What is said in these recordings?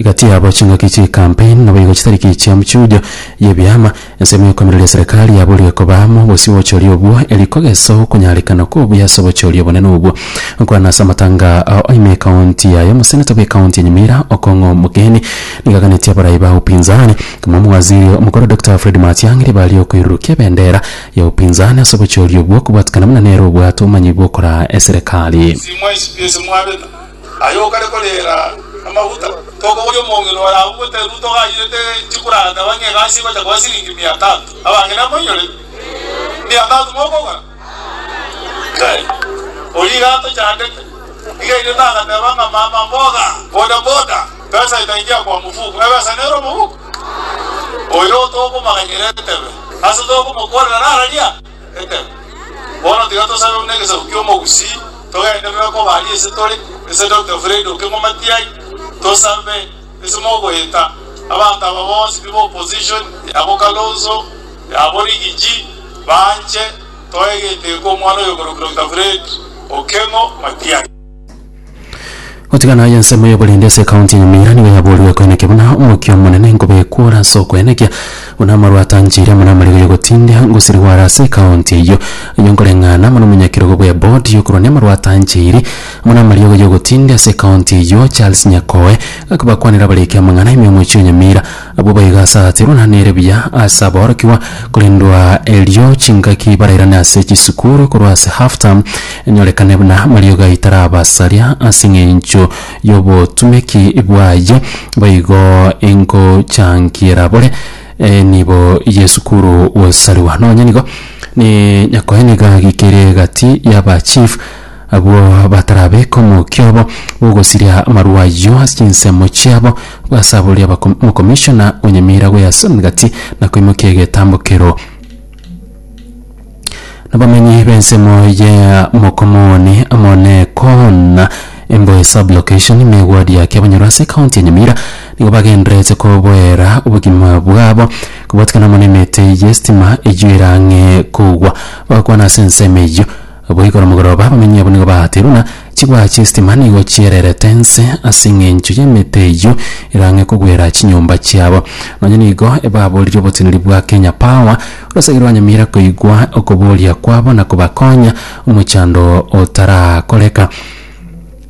Egati yabo chingaki chi'ekambi naboigo chitariki echia mchunjo y'ebiama, ensemo y'okoimereria eserekari yaboorire koba amo obosio bw'obochori obwo, eri kogesa okonyarekana okwo obuya ase obochori obonene obwo. Korana ase amatanga ao aime ekaonti yaye, omoseneta bw'ekaonti ya Nyamira, Okong'o Mokeni, nigo aganetie abarai ba upinzani, komoa omowaziri omokoro Dokita Fred Matiang'i ribaga ri'okoirurukia ebendera ya upinzani ase obochori obwo, okobwatikana buna nere obwate obomanyi bw'okoraa eserekari. Simwaisiba ase mwabeta, Aye okare koreera amaguta, tokoboria omong'ina oye agwo goteerwa togaanyerete chikuranda bang'e egasi egocha koba siringi mia tatu. Abang'ina amoinyorete? Mia tatu mokogora? Inkai! Oria iga atochandete. Iga ere tagateba ng'a mama mboga, boda boda, pesa itaingia kwa mfuko. Ebesa nere omoguko? Oyo tokomaganyera etebe, ase tokomokorera nararia? Amen. Bono tiga tosabe buna egesaku ki'omogusii, togenderere okoba aria ase tore, ase Doctor Fred Okeng'o Matiai, tosabe ase mogoeta abanto aba bonsi pi b'opposition, abo Kalonzo, abo Rigiji, banche toe egeteko omwana oyo okorokwa Doctor Fred Okeng'o Matiai. Gotigana aye ensemo y'oborindi ase ekaunti ya Nyamira nigo yaboorire ekoenekia buna omokia omonene nkobekwa ore ase okoenekia buna amarwa atanchire buna amariga y'ogotindia ngosirigwa are ase ekaunti eyio. Ayio nkoreng'ana amo nomonyakerogo bwe board yokorwa namarwa atanchiri buna amariogo y'ogotindia ase ekaunti eyio Charles Nyakoe akabakwanera abariki amang'ana ime omochie o Nyamira Abwo baigasatirwe na nere buya ase aborokigwa, korendwa erio chingaki barairane ase chisukuru korwa ase half term, enyorekane buna mariogo aye tarabasaria ase eng'encho y'obotumeki bwaye, boigo ingochangiera bore enibo y'esukuru gosariwa. Nonye nigo, ne nyakoe nigo agikire egati y'aba chief Abwo batarabeka omokiobo bw'ogosiria amarwa ayio ase chinsemo chiabo, basaborie abako- omokomishona o Nyamira gw'Easa Emegati na koimokia egetambokero. Abamenyi b'ensemo ya Mokomoni amo ne Koona, Emboe Sub-location, na Egwadi ya Kiabonyoro ase ekaunti ya Nyamira nigo bagendererete koboera obogima bwabo kobwatikana amo nemete y'estima eyio ere ang'e kogwa. Bagakwana ase ensemo eyio, Goikora mogoroba abamenyi abwo nigo baaterwa, na chigwa chi'esitima nigo chiererete inse ase engencho y'emete eyio erang'e kogwera chinyomba chiabo. Nonya nigo baaboririe oboteneri bwa Kenya Power, orosegere rwa Nyamira koigwa okoboria kwabo na kobakonya omochando otarakoreka.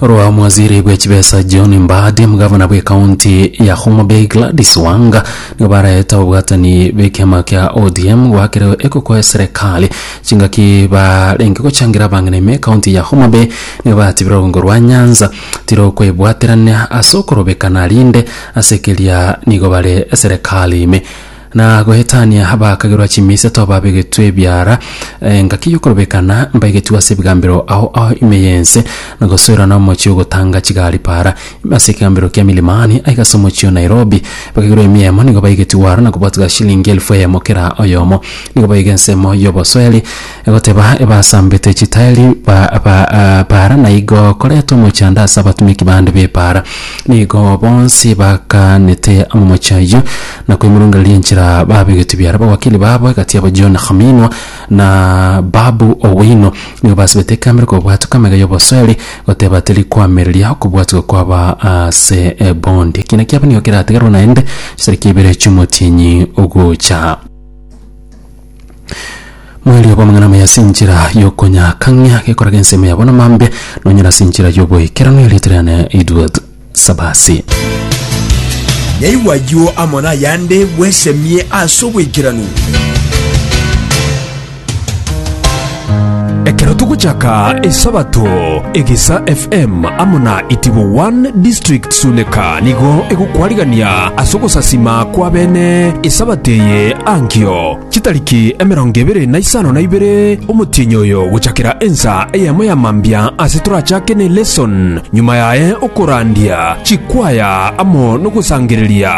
Orwamwaziri bwe chibesa John Mbadi, omogavana bwe kaunti ya Homa Bay Gladys Wanga nigo baraete ababwatani b'ekiama kia ODM gwakire ekoko eserekari chingaki barenge gochangira abang'ina ime kaunti ya Homa Bay nigo batibire orungo rwa Nyanza tirokwebwaterania ase okorobekana rinde ase keria nigo bare eserekari ime Na goetania abakagerwa chimiseto babegetwe ebiara, engaki y'okorobekana mbaigetigwe ase ebigambero ao ao ime y'ense, na gosoerana omochie ogotanga chigari para, ime ase ekegambero kia Milimani, aiga ase omochie o Nairobi. Bakagerwa emiemo nigo baigetigwe aro na kobwatwa shilingi elfu eyemo kera oyomo. Nigo baiga ensemo y'obosoeri. Egoteba ebasambete chitaeri ba ba baara na igo koreta omochando ase abatumeki bande b'ebaara. Na igo bonsi bakaanete amamochi ayio na koimorongereria enchera babegetwe biara. Abawakili babo egati yabo John Khaminwa na Babu Owino nigo basibete ekambi ere kobwatwa kamega y'obosoeri goteba teri koamereria okobwatigwa kwaba ase ebondi. Ekiina kiabo nigo kerategerwe naende chisariki ibere chi'omotienyi ogocha. Mwerio bw'amang'ana amaya ase enchera y'okonyakang'ia gekorage ensemo yabo namambe, nonyore ase enchera y'oboikeranu erieta riane Edward Sabasi. Yaigwa ayio amo nayande bwesemie ase oboikeranu. Ekero togochaka Esabato, Egesa FM amo na Itibo One District Suleka nigo egokwarigania ase ogosasima kw'abene Esabato eye ankio chitariki emerongo ebere na isano na ibere omotienyi oyo gochakera ensa eyemo ya mambia ase torachake ne lesson, nyuma yaye okorandia chikwaya amo nogosangereria.